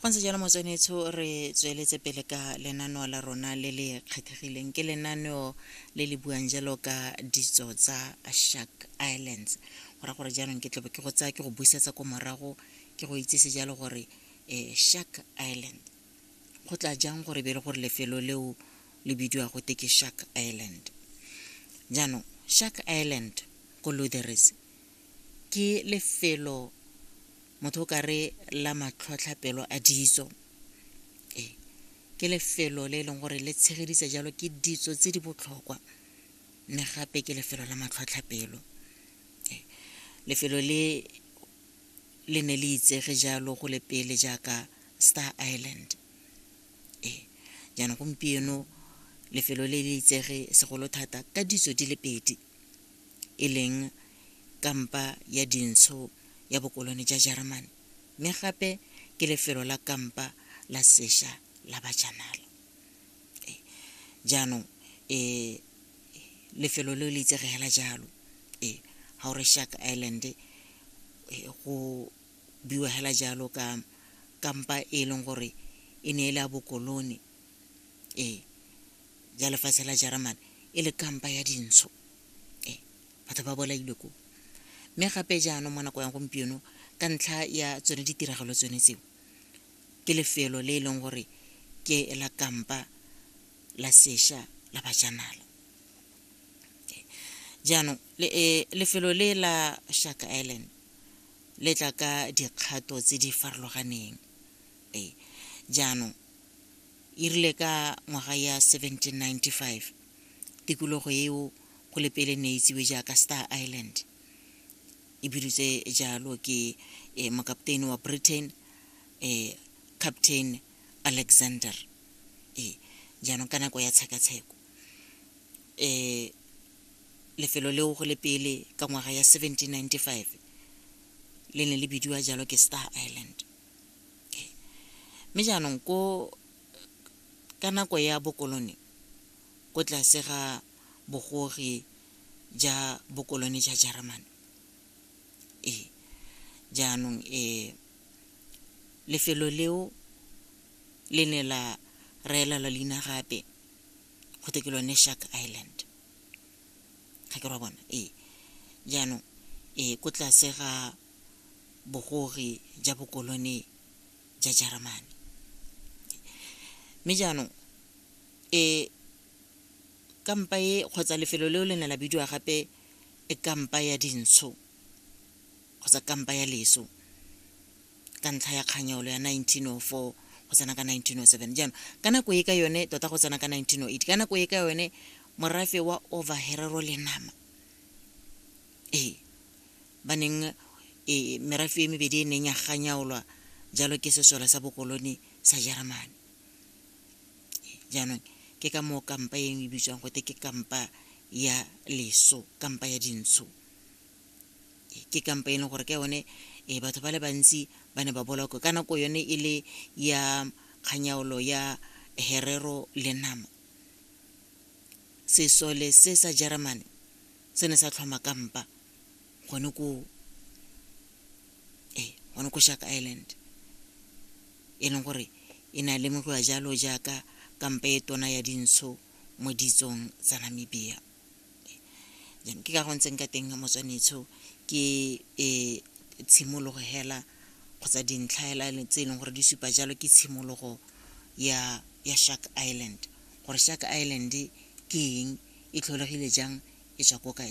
fa ntse jalo motswenetsho re tsweletse pele ka lenaneo la rona le le kgethegileng ke lenaneo le le buang jalo ka ditso tsa shark islands go ra gore jaanong ke tlobe ke go tsaya ke go busetsa ko morago ke go itsise jalo gore um shark island go tla jang gore be e le gore lefelo leo le bidiwa go te ke shark island jaanong shark island ko loderes ke lefelo motho o ka re la matlhotlhapelo a ditso e ke lefelo le e leng gore le tshegedisa jalo ke ditso tse di botlhokwa mme gape ke lefelo la matlhotlhapelo e, lefelo le le ne le itsege jalo go le pele jaaka star island e jaanong gompieno lefelo le le itsege segolo thata ka ditso di le pedi e leng kampa ya dintsho ya bokolone ja Jeremane, mme gape ke lefelo la kampa la sesha la bajanala. Eh, jaanong eh, lefelo le le itsege hela jalo eh, ga o re Shark Island eh, go biwa hela jalo ka kampa e leng gore e ne e le a bokolone ee ya lefatshe la jeremane e le kampa ya dintsho ee batho ba bolailwe ko mme gape jaanong mo nako ya gompieno ka ntlha ya tsone ditiragalo tsone tseo ke lefelo le e leng gore ke la kampa la sesha la bajanala jaanong eh, lefelo le la shaka island le tla ka dikgato tse di farologaneng Ee, jaanong, e rile ka ngwaga ya 1795, tikologo eo go le pele ne e itsiwe jaaka Star Island, e bidutswe jalo ke eh, mokapteini wa Britain, eh, Captain Alexander. Ee, jaanong ka nako ya tshekatsheko, eh, lefelo leo go le pele ka ngwaga ya 1795 le ne le bidiwa jalo ke Star Island. Mme jaanong ko ka nako ya bokolone ko tlase ga bogogi ja bokolone ja Jeremane ee jaanong um lefelo leo le ne la raelelwa leina gape go te ke lone Shark Island ga ke ra bona ee jaanong ee ko tlase ga bogogi ja bokolone ja Jeremane. Mme jaanong e kampa e kgotsa lefelo leo le ne la bidiwa gape e kampa ya dintsho kgotsa kampa ya leso ka ntlha ya kganyolo ya 1904 go tsena ka 1907 jaanong ka nako e ka yone tota go tsena ka 1908 ka nako e ka yone morafe wa overherero le nama ee ba neng e merafe e mebedi e neng ya ganyaolwa jalo ke sesole sa bokoloni sa jeremane jaanong ke ka moo kampa e e bitswang gote ke kampa ya leso kampa ya dintsho ke kampa e leng gore ka yone e batho ba le bantsi ba ne ba boloko ka nako yone e le ya kganyaolo ya herero le nama sesole se sa jeremane se ne sa tlhoma kampa gone ko ee gone ko shark island e leng gore e ne a lemogiwa jalo jaaka kampa e tona ya dintsho mo ditsong tsa namibia jaanong ke ka go ntseng ka teng motswanetsho ke um tshimologo hela kgotsa dintlha hela tse e leng gore di supa jalo ke tshimologo ya ya shark island gore shark island ke eng e tlholegile jang e tswa ko kae